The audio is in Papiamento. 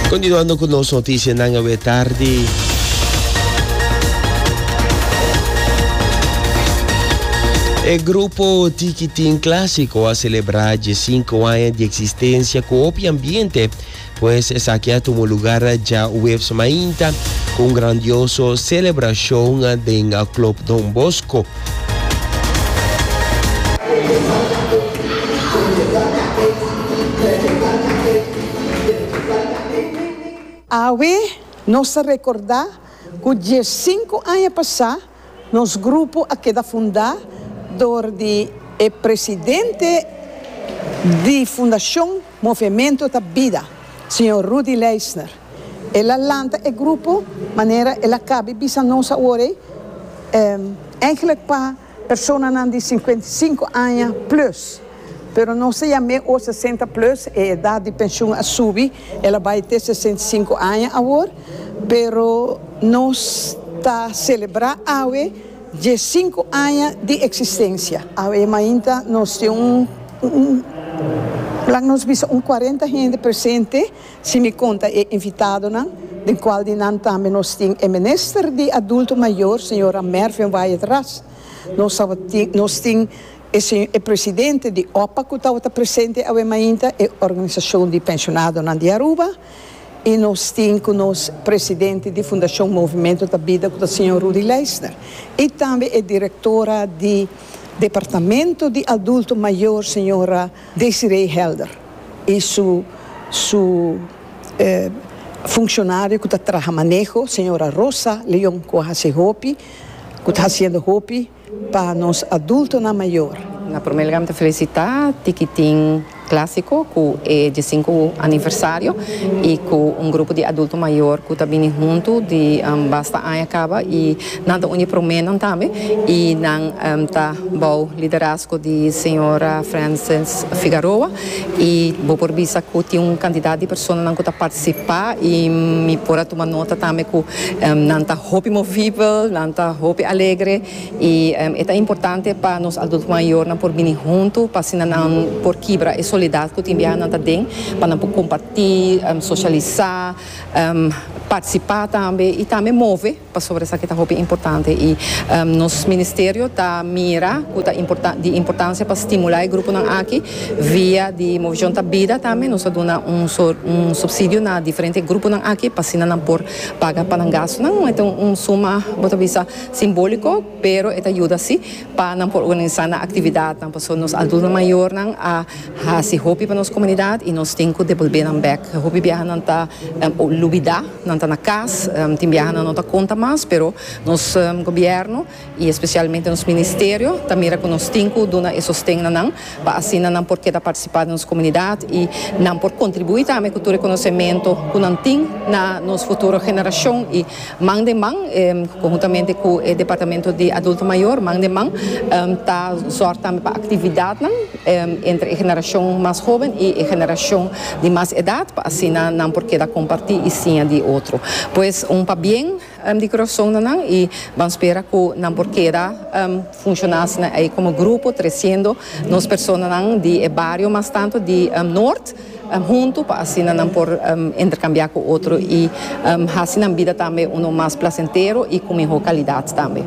Continuando cu nos noticianan awe tardi. E grupo Tikitin Clásico a celebra dje sinku aña di eksistensia ku hopi ambiente, pues esaki a tumu lugar dja webs mainta ku un grandioso selebrashon den Club Don Bosco. Awe nos ta rekordá ku diesinku aña pasá nos grupo a keda fundá dor di e presidente di Fundashon Movementu ta Bida, señor Rudy Leisner. El a lanta e grupo manera el a kabe bisa nos awor ei, ègèlèk pa personanan di sinkuenta i sinku aña plùs, pero nos ta yam'é awor sesenta plùs, e edat di penshun a subi, el a bai te sesenta i sinku aña awor, pero nos ta selebrá awe dje sinku aña di eksistensia. Awe mainta nos tin un, laga nos bisa un kuarenta hende presente. Si mi konta e invitadonan, den kual di nan tambe nos tin e Minister di Adulto Mayor, señora Mervin Wyatt Ras. Nos tabatin, nos tin e se, e presidente di OPPA ku tabata presente awe mainta, e Organisashon di Penshonadonan di Aruba, i nos tin ku nos presidente di Fundashon Movimento ta Bida ku ta señor Rudy Leisner, i tambe e direktora di Departamento di Adulto Mayor, señora. Desiree Helder y su su funcionario cu ta traha maneho señora Rosa Leon cu a haci hopi cu ta haciendo hopi pa nos adultonan mayor. Na primer lugar mi ta felicita Tikitin Clasico cu e diesinco aniversario y cu un grupo di adulto mayor cu ta bini hunto di basta aña caba y Nan ta un di proménan tambe i nan ta bou liderazgo di señora Frances Figaroa i bo por bisa ku tin un kantidat di personanan ku ta partisipá i mi por a tuma nota tambe ku nan ta hopi movibel, nan ta hopi alegre i e ta importante pa nos adulto mayornan por bini huntu pa asina nan por kibra e solidat ku tin biaha nan ta den pa nan por kompartí, sosialisá, partisipá tambe i tambe move. Pasobra esaki ta hopi importante i nos ministerio ta mira ku ta di importansia pa stimulá e gruponan aki via di Movishon ta Bida tambe nos a duna un subsidio na diferente gruponan aki pa asina nan por paga pa nan gastunan e ta un suma bo ta bisa simbóliko pero e ta yuda si pa nan por organisá nan aktividatnan pasobra nos adulto mayornan a hasi hopi pa nos komunidat i nos tin ku debolbé nan bèk hopi biaha nan ta lubidá. Nan ta na cas, tin biaha nan no ta conta mas, pero nos gobierno y especialmente nos ministerio ta mira cu nos tin cu duna e sosten na nan pa asina nan por keda participa den nos comunidad y nan por contribui tambe cu tur e conocemento cu nan tin na nos futuro generacion y man den man conhuntamente cu e departamento di adulto mayor man den man ta zorg tambe pa actividadnan entre e generashon mas hoben i e generashon di mas edat pa asina nan por keda kompartí i siña di otro. Pues un pabien di kurason na nan i ban spera ku nan por keda funshoná asina ei komo grupo tresiendo nos personanan di e bario mas tantu di Noord, huntu pa asina nan por interkambiá ku otro i hasi nan bida tambe unu mas plasentero i ku mihó kalidat tambe.